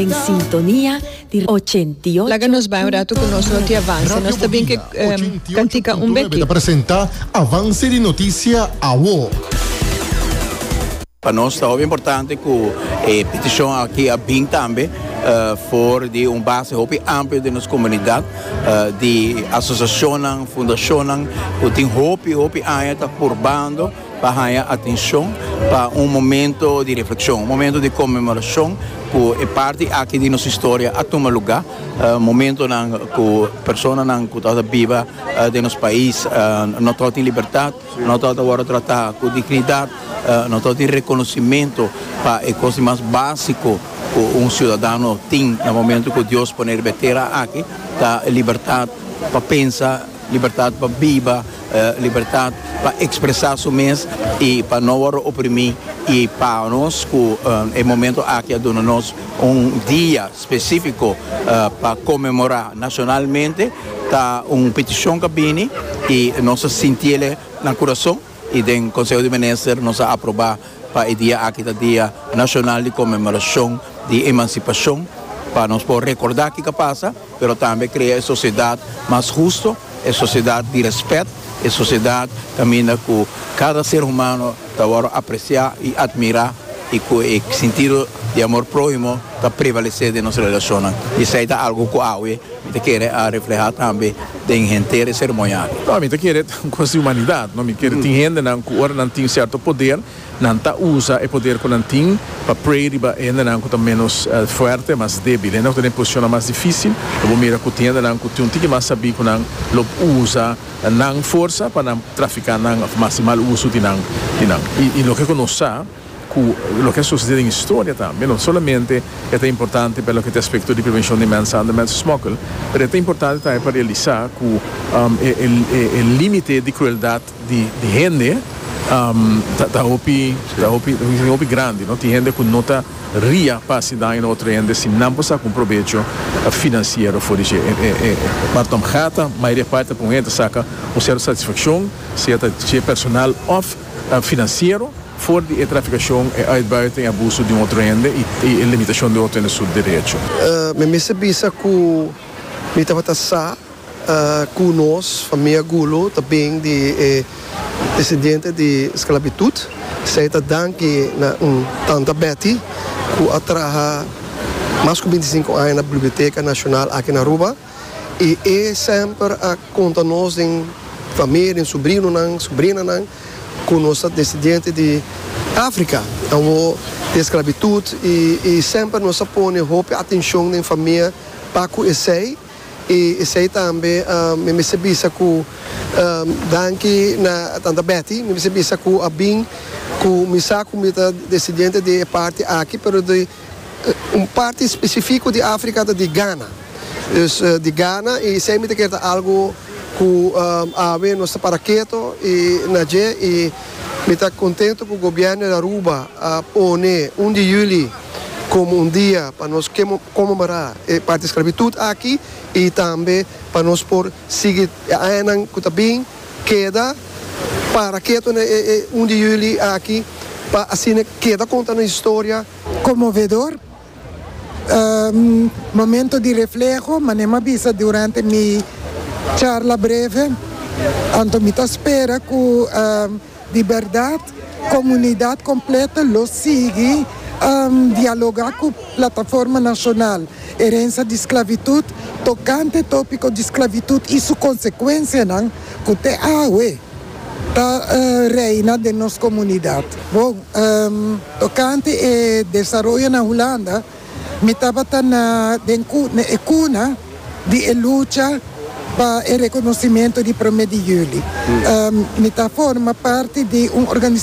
Den sintonia di Radio ochenta i ocho punto nuebe. Ta presenta Avance di Noticia Awo. Pa nos ta hopi importante cu e peticion aki a bin tambe for di un base hopi amplio den nos comunidad di asociacionnan, fundacionnan cu tin hopi hopi aña ta purbando. pa haña atenshon pa un momento di reflekshon, un momento di konmemorashon ku e parti aki di nos historia a tuma lugá, momentonan ku personanan ku tabata biba den nos pais no tabata tin libertat, no tabata wòrdu tratá ku dignidat, no tabata tin rekonosimentu pa e kos di mas básiko ku un siudadano tin na momento ku Dios pone riba e tera aki, ta libertat pa pensa, libertat pa biba. Libertat pa expresa su mes y pa no worde oprimi y pa nos cu e momento aki a duna nos un dia specifico pa conmemora nacionalmente ta un peticion cu a bini y nos a sintiele na curason y den Conseho di Minister nos a aproba pa e dia aki ta dia nacional di conmemoracion di emancipacion pa nos por recorda kico a pasa. pero tambe krea e sosiedat mas husto, e sosiedat di rèspèt, e sosiedat kaminda ku kada ser humano ta wòrdu apresiá i atmirá i ku e sintido di amor próhimo ta prevalesé den nos relashonnan. I esei ta algu ku awe mi ta kere a reflehá tambe den henter e seremonial. Mi ta kere un kuestiumanidad. Mi kere tin hendenan ku ora nan tin sierto poder, Nan ta usa e poder cu nan tin pa pray riba hendenan cu ta menos fuerte, mas debil. Hende cu ta den posicionnan mas dificil, lo bo mira cu tin hendenan cu tin un tiki mas sabí cu nan lo usa nan forsa pa nan trafica nan of mas di mal uso di nan. I loke cu nos sa cu loke a sucede den historia tambe, no solamente e ta importante pa loke ta aspecto di prevencion di mensenhandel, mensensmokkel, pero e ta importante tambe pa realisa cu e limite di crueldad, di hende ta hopi hopi grandi no tin hende ku no ta ria pa hasi daño na otro hende si nan por saka un probecho finansiero for di shi e marton gata mayoria parti pa un hende ta saka un serto satisfakshon sea ta dje personal of finansiero for di e trafikashon e uitbuiting e abuso di un otro hende i e limitashon di otro hende su derecho. Mi mester bisa ku mi tabata sa. Ku nos famia Gulu ta bin di e desidiente di sklabitut, esei ta danki na un tanta Betty ku a traha mas ku binti sinku aña na Biblioteka Nashonal aki na Aruba i e semper a konta nos den famia, den subrinonan, subrinanan ku nos ta desidiente di Afrika, awo di e sklabitut i semper nos a pone hopi atenshon den famia pa ku esei. I esei tambe mi mester bisa ku danki na Tanta Betty, mi mester bisa ku a bin ku mi sa ku mi ta desendiente di e parti aki pero di un parti spesifiko di Afrika ta di Gana. Dus di Gana i esei mi ta kere ta algu ku awe nos ta para keto i na dje i mi ta kontentu ku gobièrnu di Aruba a pone un di yüli komo un dia pa nos konmemorá e parti sklavitut aki i tambe pa nos por sigui e añanan ku ta bin keda para ketu na e un di yuli aki pa asina keda konta nos historia. Konmovedor momento di refleho, manera mi a bisa durante mi charla breve, anto mi ta spera ku. Di bèrdat, komunidat kompleto lo sigui dialogá ku Plataforma Nashonal Erensia di Sklavitut tokante tópiko di sklavitut i su konsekuensianan ku te awe ta reina den nos komunidat. Bon, tokante e desaroyo na Hulanda. Mi tabata na den e cuna di e lucha pa e reconocimento di Prome di Juli. Mi ta forma parti di un organizacion.